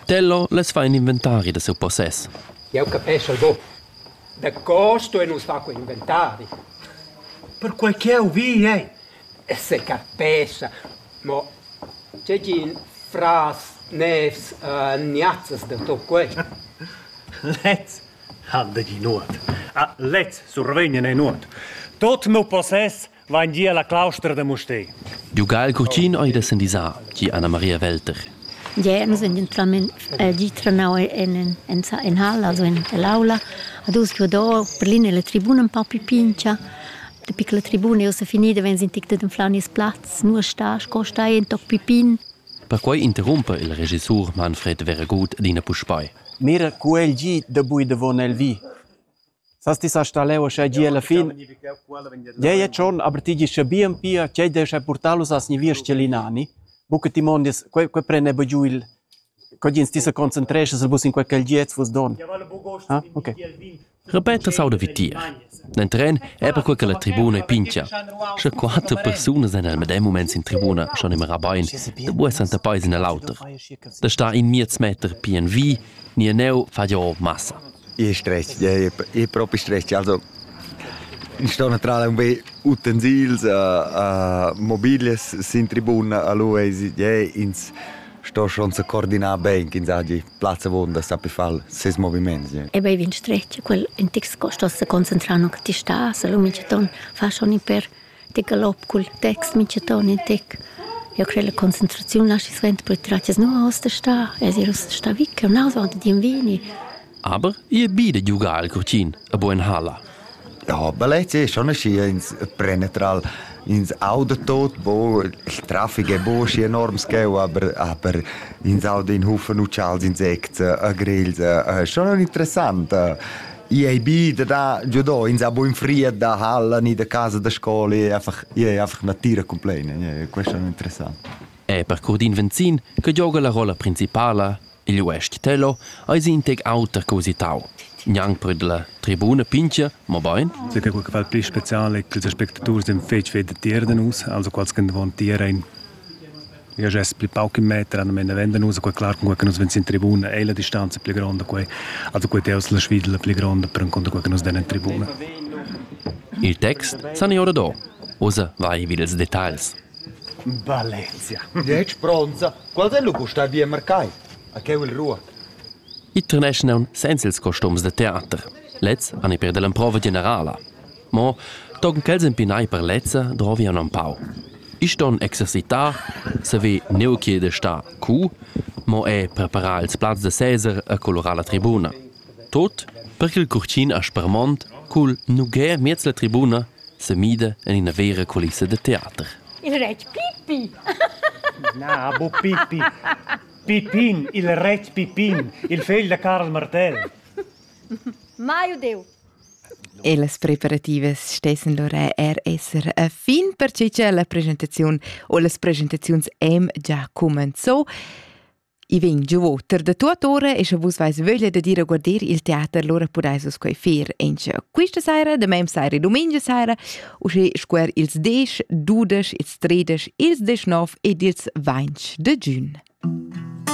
Tenor lez fa in inventari da siu possess. Jau capeschel buc. Daco stuein nus far quei inventari? Perquei ch'jeu vi ei. Se capescha, mo tgegin fras nevs uh, niazzas da tu quei. Lez ha dagin nuot. Ah, lez survegn in nuot. Tot meu possess vain gia la claustra da Mustér. Dugal Curtin ei da sendisar, gi Anna Maria Welter. Ja, nus en gentlament eh, di trenau en en in hall, also in l'aula, ad us che do per linea la tribuna un po più pincia. De piccola tribuna io se finida wenn sind tic den flaunis platz, nur sta, sco stai in toc pipin. Perquei interrumpa il regissur Manfred Veragut d'ina puspei. Mira, cu el gi da bui davon el vi. Sas ti sa sta leu aschia gie alla fin? Gie, e tschon, aber ti gi scha bien pia, tgei descha purtalus has ni viers Celinani? Buca ti mondias, quei, quei prende bu giu il, co gins ti sa concentresches el bus in quei gelgiez vus don. Ah, okay. Repeta sauda vi tier. Nel tren è per quel che la tribuna è pincia. Sche quattro persone sind al medem moment in tribuna schon immer rabain, da buessan der Paes in l'auter. Da sta in miez meter pien vi, ni en neu fa jo massa. ich stress, ja, ich, ich propi stress. Also, ich sto naturalmente un be utensils, uh, uh, mobiles sin tribuna a lui e ja, ins sto schon so coordinar bene, ins ha die Platz wohnt, sapi far ses movimenti. Ja. E bei vin stress, quel in tix sto se concentrare che ti sta, se lo mi ton fa schon per Tica'l op cul text mincha ton in tic. Eu crei la concentraziun laschi suenter pür tratgas nun haust da star, es ir ussa sta vi ch'eu n'haus auncha d'invini. Aber i è bi da giugar al curtin a buon halla. Ja, Ballett ist schon ein schönes Prenetral. Ins Audentot, wo das Traffic ist enorm gell, aber, aber ins Audenhofen und Charles Insekten, Grills, schon interessant. I ei bi da da giudò ins ha buin fried da halla ni da casa da scola e einfach e einfach natira compleina, questo è interessant. E per Curdin Venzin, che gioga la rolla principala, il uestg Tello, eis in tec auter che usitau. Gnanc per la tribuna pincha, ma bain. Siete quel che fa il pli speciale che gli spettatori si feci vedere nus, also quals che davanti era in io gest pli pauc in meter an mena venda nus quei clar con che nus vens in tribuna ei la distanza pli gronda quei also quei teus la svidla pli gronda per con che nus den in tribuna il text san io do osa vai vid ils details Valencia. Dieci bronza, quals è lu gustar via mercai? A che il ruot? I terneschnan senza ils costums da teater. Lez an per dell'emprova generala. Mo tochen ch'els empinai per lezza drovian empau. Isch ston exercitar, saver neu ch'ei de star cu, mo er preparar ils plazs da seser e colorar la tribuna. Tot per ch'il curtgin aspermont cul nugher miez la tribuna semida en ina vera culissa de teater. Il retg Pippi! Na, bo Pippi. Pippin, il retg Pippin, il fegl da Carl Martell. Mai udeu. E las preparativas stessen lura er esser a fin, pertgei che la presentaziun o las presentaziuns èn già cumenzau. I vegn giu oter da tua ora e sche vus vais vöglia da dir a guarder il teater, lura pudais vus quei fer en questa saira, da mem saira e domenica saira, usche squer ils 10, 12, ils 13, ils 19 ed ils 20 de giugn.